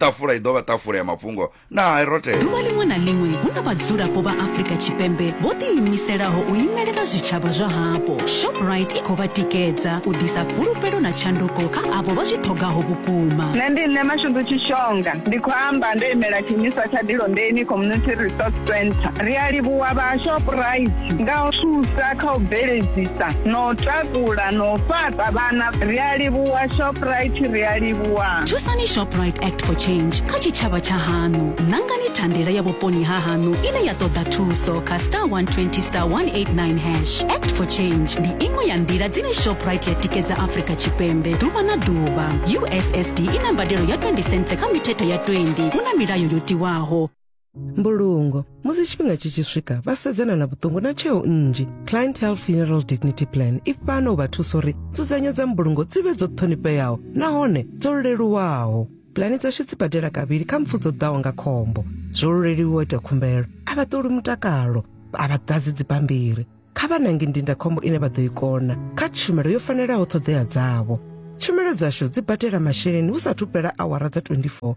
ṱafula i ḓo vha ṱafula ya mafhungo na herothe Ḓuvha ḽiṅwe na ḽiṅwe hu na vhadzulapo vha Afrika Tshipembe vho ḓiimiselaho u imelela zwitshavha zwa hapo. Shoprite i khou vha tikedza u ḓisa fhulufhelo na tshanduko kha avho vha zwi ṱhogaho vhukuma. Nṋe ndi Nṋe Mashudu Tshishonga, ndi khou amba ndo imela tshiimiswa tsha Dilondeni Community Resource Centre. Ri a livhuwa vha Shoprite nga u thusa kha u bveledzisa na u takula na u fhaṱa vhana. Ri a livhuwa Shoprite, ri a livhuwa. thusani shoprite act for change kha tshitshavha tsha hanu nangani thandela ya vhuponi ha hanu ine ya ṱoḓa thuso kha star 120 star 189 hash act for change ndi iṅwe ya nḓila dzine shoprite ya tikedza afrika tshipembe ḓuvha na ḓuvha ussd i na mbadelo ya 20 cents kha mithethe ya 20 hu na milayo yo tiwaho mbulungo musi tshifhinga tshi tshi swika vha sedzana na vhuṱungu na tsheo nnzhi clientele funeral dignity plan i fana u vha thusa uri nzudzanyo dza mbulungo dzi vhe dzo ṱhonifheaho nahone dzo leluwaho pulani dzashu dzi badela kavhili kha mpfu dzo ḓaho nga khombo zwo luleliwa ita khumbelo a vha ṱoli mutakalo a vha ḓadzi dzibammbiri kha vha nange ndindakhombo ine vha ḓo i kona kha tshumelo yo fanelaho ṱhoḓea dzavho tshumelo dzashu dzi badela masheleni hu sathu fhela awara dza 24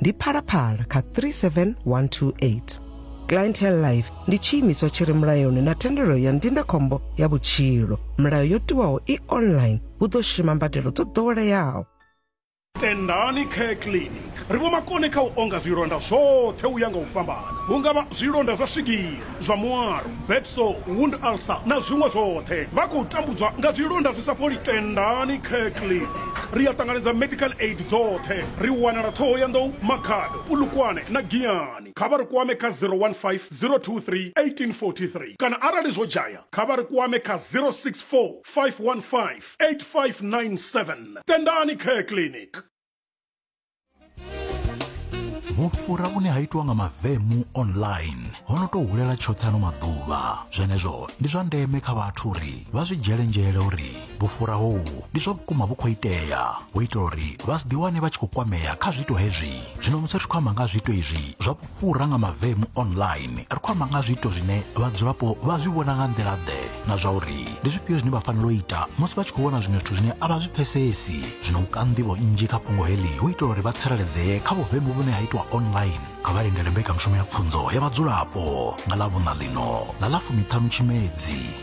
ndi phalaphala kha 37128 clientele life ndi tshiimiswa tshi re mulayoni na thendelo ya ndindakhombo ya vhutshilo milayo yo tiwaho i online hu ḓo shuma mbadelo dzo ḓoweleaho tendani care clinic ri vho makone kha u onga zwilonda zwoṱhe u ya nga u fhambana hu nga vha zwilonda zwa swigiri zwa muaro, bed sore, wound ulcer na zwiṅwe zwoṱhe. Vha khou tambudzwa nga zwilonda zwi sa fholi. Tendani Kirkley. Ri a ṱanganedza medical aid dzoṱhe. Ri wanala Thohoyandou, Makhado, Polokwane na Giyani. Kha vha ri kwame kha 015 023 1843 kana arali zwo dzhaya kha vha ri kwame kha 064 515 8597. Tendani Care Clinic. vhufhura vhune ha itiwa nga mavemu online ho no tou hulela tshoṱhe ano maḓuvha zwenezwo ndi zwa ndeme kha vhathu uri vha zwi dzhiele nzhele uri vhufhura hohu ndi zwa vhukuma vhu khou itea hu itela uri vha si ḓiwane vha tshi khou kwamea kha zwiito hezwi zwino musi ri tshi khou amba nga ha zwiito izwi zwa fhura nga mavemu online ri khou amba nga zwiito zwine vhadzulapo vha zwi vhona nga nḓila ḓe na zwa uri ndi zwifhio zwine vha fanela u ita musi vha tshi khou vhona zwiṅwe zwithu zwine a vha zwi pfesesi zwino u ka nḓivho nnzhi kha fhungo heḽi hu itela uri vha tsireledzee kha vhuvemu vhune ha itwa online kha vha lindele mbekanyamushumo ya pfunzo ya vhadzulapo nga ḽa vhuṋa ḽino ḽa ḽa fumiṱhanu tshimedzi